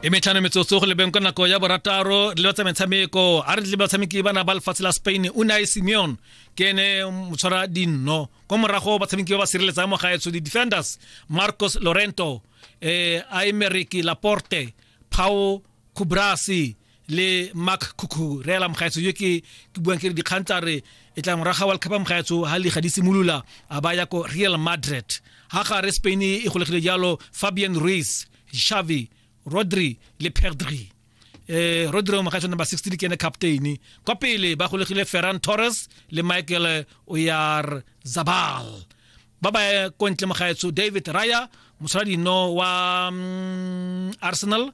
e metlhano metsotso go lebeng ka nako ya borataro le batsa metshameko a re tle batshameki ba na ba lefatshe la spain o ne a e simeon ke ene motshwara dinno kwa morago batshameki ba ba sireletsang mo gaetsho di-defenders marcos lorento eh, aemeric laporte pao kubrasi le mark khukhu re ela mogaetso yo ke ke buang ke re dikgang tsa re e tla moraga world cup mogaetso ha liga di simolola a ba ya ko real madrid ha ga re spain e golegile jalo fabian ruiz xavi rodri le pedri eh rodri mogaetso number 16 ke ene captain kwa pele ba golegile ferran torres le michael oyar zabal ba ba kontle mogaetso david raya mosaladi no wa mm, arsenal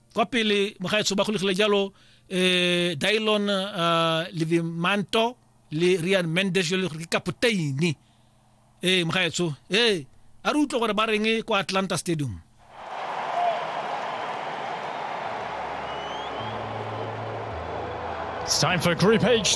kwa pele mogaetsho ba golegile jalo eh Dylon uh, Livimanto le Rian Mendes jalo gore ke kapoteini eh mogaetsho eh a re utlwe gore ba reng kwa Atlanta Stadium It's time for Group H.